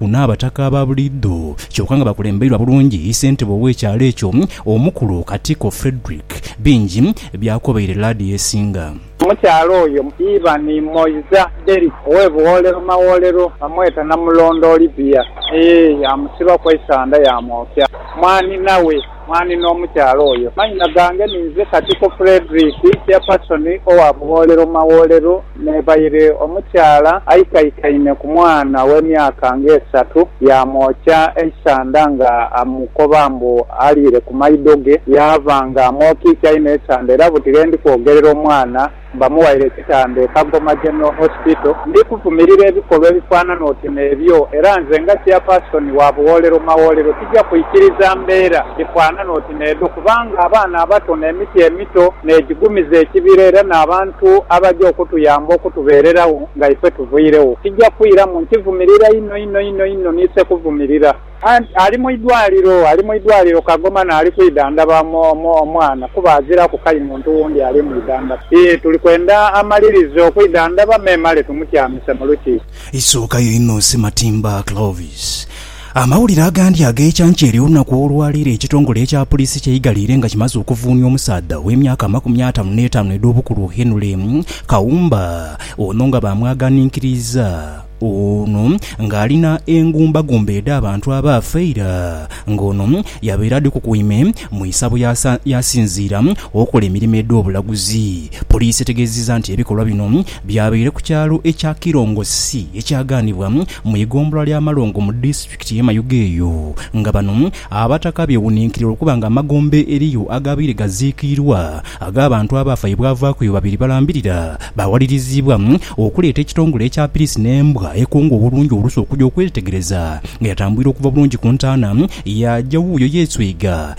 Kuno abataka aba buliidho kyoka nga bakulembeirwa bulungi ssentebe ow'ekyalo ekyo omukulu Katiko Fredrick bingi byakobeire laadi esinga. Omukyala oyo Ivan Moiza Derrick owe Buwolero Mawolero bamweta Namulondo Olivia eeh yamusibaku eisanda yamwokya mwanhina we. Mwanhi n'omukyala oyo. Manhina gange ni nze Katiko Fredrick, Chairperson owa Bugholero Magholero n'ebaire omukyala aikaikaine ku mwana ow'emyaka ng'esatu yaamwokya eisanda nga amukoba mbu aliire ku maido ge yaaba nga amwokiikyainho esanda era buti lwe ndi kwogerera omwana Bamuwaire ekitanda e Kagoma General Hospital. Ndi kuvumirira ebikolwa ebifaanana oti n'ebyo era nze nga Chairperson wa Buwoolero Mawoolero tija kwikiriza mbeera dhifaanana oti n'edho kubanga abaana abato n'emiti emito n'egigumiza ekibira era n'abantu abaja okutuyamba okutubeererawo nga ife tuvairegho tija kwiramu. Nkivumirira inho inho inho inho niise kuvumirira. Anti ali mu idwaliro, ali mu idwaliro Kagoma naali kwidhandhaba omwana kuba aziraku kai muntu wundi ali mu idhandhaba. Ii, Tuli kwenda amalirize okwidhandhaba memale tumutyamise mu lukiiko. Isookayo inho Sematimba Clovis. Amawulire agandi ag'ekyankya ery'olunaku olwaleero ekitongole ekya Puliisi kyeigaliire nga kimaze okuvuunia omusaadha ow'emyaka amakumi ataanu n'etaanu edh'obukulu Henry Kawumba ono nga baamwaghaninkiriiza Ono ng'alina engumbagumba edh'abantu abaafa eira, ng'ono yabaire adhikukuime mu isabo yaasinziira okola emirimo edh'obulaguzi. Poliisi etegeezizza nti ebikolwa bino byabaire ku kyalo ekya Kirongosi ekyagaanibwa mu igombolola ly'Amalongo mu disitulikiti. Pikiti ye mayuge eyo, nga bano Abataka beewuninkirira okuba nga amagombe eriyo agaabaire gaziikiirwa ag'abantu abaafa ye bwavaaku eyo babiri balambirira, baawaliriziibwa okuleeta ekitongole ekya Pirisi n'embwa ekonga obulungi olusu okuja okwetegereza nga yatambwire okuva bulungi ku ntaana, yaaja wuuyo yeeswiga.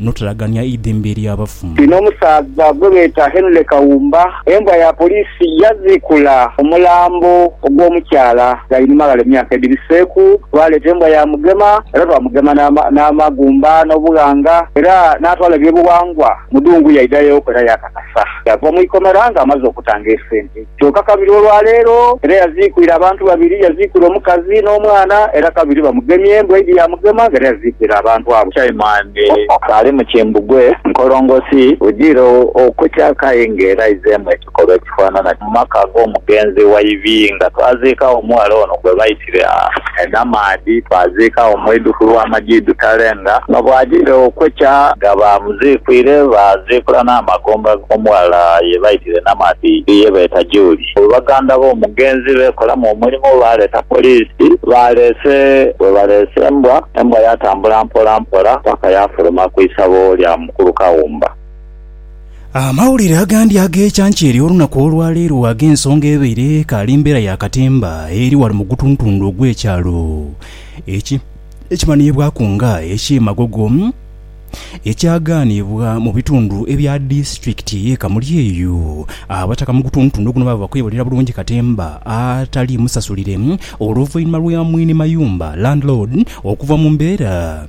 n'otalagania eidhembe ly'abafu. Inho omusaadha gwe beeta Henry Kawumba, embwa ya poliisi yaziikula omulambo ogw'omukyala Ghainuma ghale mu myaka edhibiseeku. Baaleeta embwa ya Mugema era baamugema n'amagumba n'obughanga era n'atwala ebyobughangwa mu dungu yaidha yooku era yaakakasa. Yaava mu ikomera ng'amaze okutanga esente. Kyoka kabiri olwa leero era yaziikwire abantu babiri, yaziikwire omukazi n'omwana, era kabiri bamugemye, embwa eidhi yaamugema ng'era yaziikwire abantu abo. Chaimani kaali mu kimbugwe nkolongosi bwidhire okukya kayi ng'era aizeemu ekikolwa ekifaanana kino mu maka ag'omugenzi wa Ibinga. Twaziika omughala ono gwe baita. E Namaadhi twaziikagho mwidhuku lwa Majidu Talenga. Nga bwajire okwekya nga baamuziikwire, baaziikula n'amagombe ag'omughala ye baitire e Namaadhi ye beeta Julie. Baganda b'omugenzi beekolamu omulimu, baaleeta poliisi. Baaleese bwe baleese embwa, embwa yaatambula mpolampola paka yaafuluma ku isabo lya mukulu Kawumba. Amawulire agandi ag'ekyankya ery'olunaku olwa leero ag'ensonga ebaire ekaali mbeera ya katemba eri ghano mu gutuntundu ogw'ekyalo ekimanhiibwaku nga eky'e Magogo ekyagaanibwa mu bitundu ebya disitulikiti y'e Kamuli eyo. Abataka mu gutuntundu guno baaba bakwebulira bulungi katemba atali musasulire oluvainhuma lwa mwine mayumba, Landlord, okuva mu mbeera.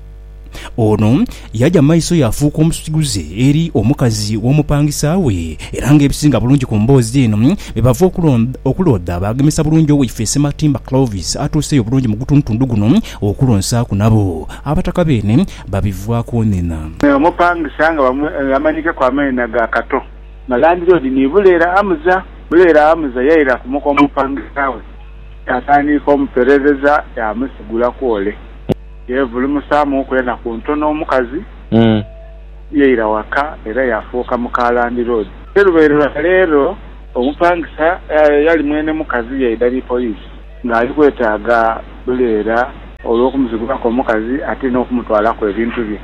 Ono yaja mu maiso yaafuuka omusiguze eri omukazi w'omupangisa we era nga ebisinga bulungi ku mboozi eno be bava okuloodha baagemesa bulungi Owaife Ssematimba Clovis atuuseeyo bulungi mu gutundutundu guno okulonsaaku nabo Abataka beene babivwaaku onena. Me omupangisa nga amanyikeku amanhena ga Kato nga landiroodi ni Buleera Amuza. Buleera Amuza yaira ku muka omupangisa we yaatandiika omuperereza yaamusigulaku ole. Yeevulumusaamuuku enaku ntono omukazi yaira waka era yaafuuka muka landiroodi. Olubaire lwa leero omupangisa eyali mwene mukazi yaidha ni poliisi ng'ali kwetaaga buleera olw'okumuzigulaku omukazi ate n'okumutwalaku ebintu bye.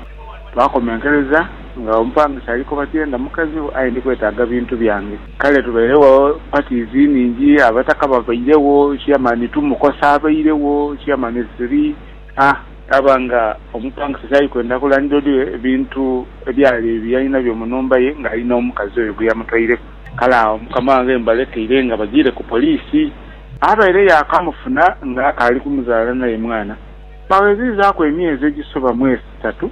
Twakomenkereza nga omupangisa ali koba tienda mukazi wo aye ndi kwetaaga bintu byange. Kale tubairegho parties nhingi abataka babairegho chairman two mukosa abairegho chairman three a. Aba nga omupangisa kyali kwenda ku landlord we ebintu ebyali byalinabyo mu nhumba ye nga ali nomukazi oyo gweyamutwaireku. Kale agho mukama wange mbalekeire nga bagiire ku police. Abaire yakamufuna nga akaali kumuzaala naye mwana. Baweziizaku emyezi egisoba mwesatu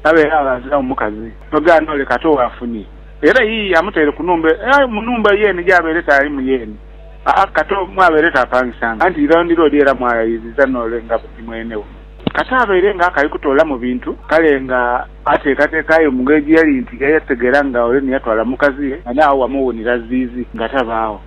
abaire abaazila omukazi. Nogaana ole kati owafunye. Era yiye amutaire ku nhumba eyo, aye mu nhumba yeene gy'abaire taalimu yeene, aa kato mw'abaire taapangisanga, anti landiloodi era mw'ayayiriza noole nga ni mwene we. Kato abaire nga akali kutoolamu bintu, kale nga ateekateeka aye mu ngeri gye yali nti yategeera nga ole ni yatwala mukazi ye nga n'agho wamuwuunira ziizi nga tabaagho.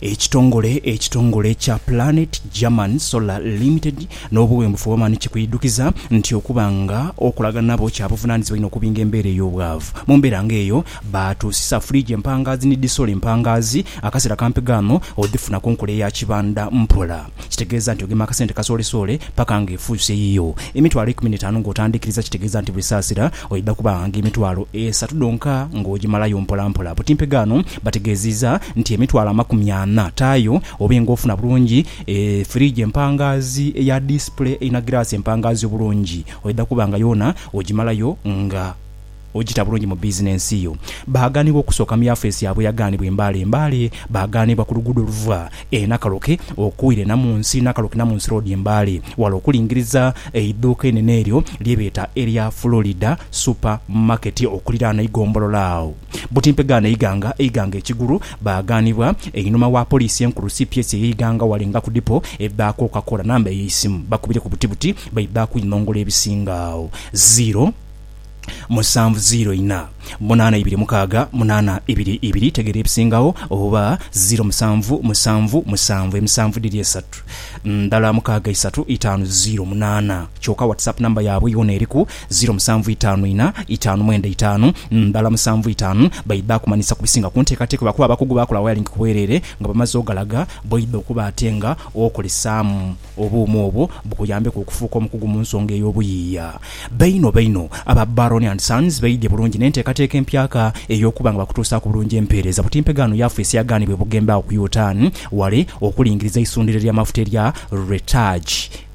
Ekitongole ekitongole ekya Planet German Solar Limited n'obuwembufu Oman kikwidhukiza nti okuba nga okolagana nabo kya buvunaanyizibwa inho okubinga embeera ey'obwavu. Mu mbeera nga eyo, baatuusisa fridge empangaazi ni disoli empangaazi. Akaseera kampi ghano odhifuna ku nkola eya kibanda mpola. Kitegeeza nti ogema akasente kasoolesoole paka nga efuuse yiyo. Emitwalo eikumi n'etaanu ng'otandiikiriza kitegeeza nti buli saasira oidha kuba nga emitwalo esatu dhonka ng'ogimalayo mpolampola. Butimpe ghano, Bategeziiza nti emitwalo amakumi ana taayo obe nga ofuna bulungi e firiji empangaazi eya display eina giraasi empangaazi obulungi oidha kuba nga yoona ogimalayo nga ogita bulungi mu bizinensi yo. Baagaanibwa okusooka mu yafeesi yaabwe eyagaanibwa e Mbale e Mbale Baagaanibwa ku luguudo oluva e Nakaloke okwira e Namunsi Nakaloke Namunsi Road e Mbale wala okulingiriza eidhuuka einene eryo lye beeta erya Florida Super Market okuliraana eigombolola agho Buti mpegaano eighanga eighanga ekigulu baaghanibwa. Einhuma wa Poliisi enkulu cps ey'eighanga ghale nga ku dipo ebaaku Coca-Cola namba ey'eisimu bakubireku buti buti baibaaku inhongolo ebisinga agho ziiro musanvu ziiro ina munaana ibiri mukaaga munaana ibiri ibiri tegeera ebisingagho oba ziiro musanvu musanvu musanvu emisanvu dhiri esatu ndala mukaaga isatu itaanu ziiro munaana kyoka WhatsApp namba yaabwe yoona eriku Ziro musanvu itaanu ina itaanu mwenda itaanu ndala musanvu itaanu baidha kumanhisa ku bisinga ku nteekateeka lwakuba abakugu baakola wayalingi ku bwereere nga bamaze ogalaga bw'oidha okuba ate nga okolesaamu obuuma obwo bukuyambeku okufuuka omukugu mu nsonga ey'obuyiiya. Baino baino aba Baroni and Sons beidhye bulungi n'enteekateeka empyaka ey'okuba nga bakutuusaaku bulungi empeereza butimpegaa no yaafeesi agaanibwa e Bugembe agho ku Yutan wale okulingiriza eisundhiro ly'amafuta erya Retaj.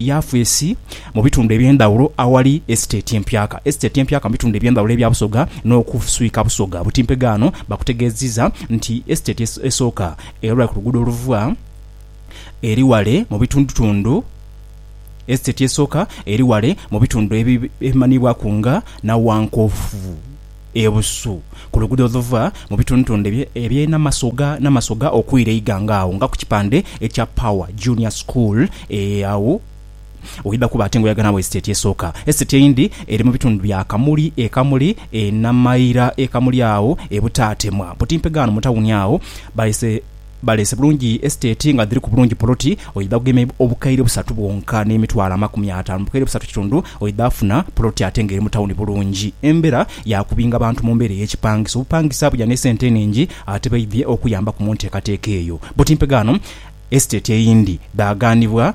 yafeesi mu bitundu eby'endhaghulo aghali esiteeti empyaka esiteeti empyaka mu bitundu eby'endhaghulo ebya Busoga n'okuswika Busoga butimpegaano bakutegeeziza nti esiteeti esooka erula ku luguudo oluva eri ghale mu bitundutundu esiteeti esooka eri ghale mu bitundu ebimanhiibwaku nga Nawankofu. e Busu, ku luguudo oluva mu bitundutundu eby'e Namasoga Namasoga okwira e Iganga agho nga ku kipande ekya Power Junior School ee agho oidha kuba ate nga oyaga naawo esiteeti esooka. Esiteeti eyindi eri mu bitundu bya Kamuli e Kamuli e Namaira e Kamuli agho e Butaatemwa. Butimpegano mu tawuni agho baise. Baleese bulungi esiteeti nga dhiriku bulungi poloti oidha kugema obukaire busatu bwonka n'emitwalo amakumi ataanu bukaire busatu kitundu oidha kufuna poloti ate nga eri mu tawuni bulungi. Embera ya kubinga bantu mu mbeera ey'ekipangisa obupangisa buja n'esente enhingi ate baidhie okuyambaku mu nteekateeka eyo. Buti mpegaano esiteeti eyindi dhaaganibwa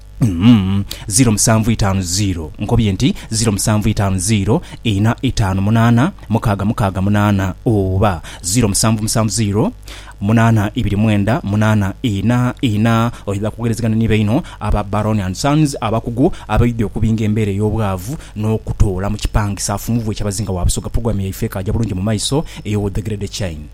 ziro musanvu itaanu ziro. Nkobye nti ziro musanvu itaanu ziro ina itaanu munaana mukaaga mukaaga munaana oba ziro musanvu musanvu ziro munaana ibiri mwenda munaana ina ina. Oidha kwogerezegana ni baino aba Baroni and Sons abakugu abaidhi okubinga embeera ey'obwavu n'okutoola mu kipangisa Funvu we kyabazinga wa Busoga. Pulogulaamu yaife ekaaja bulungi mu maiso ey'owa The Grade Chain.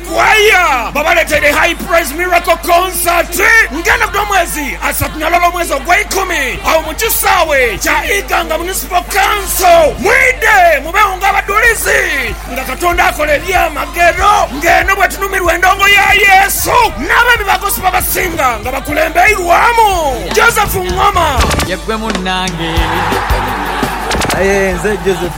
Kwaya babaleteire High Praise Miracle Concert nga eno buli mwezi asatu na lwaba mwezi ogweikumi agho mu kisaawe kya Iganga Municipal Council. Mwidhe mubeegho nga abadhulizi nga Katonda akola ebyamagero nga eno bwetunumirwa endongo ya Yesu n'abeemi ba Gospel abasinga nga bakulembeirwamu Joseph Ngoma. Ye ggwe munnange. Aye nze Joseph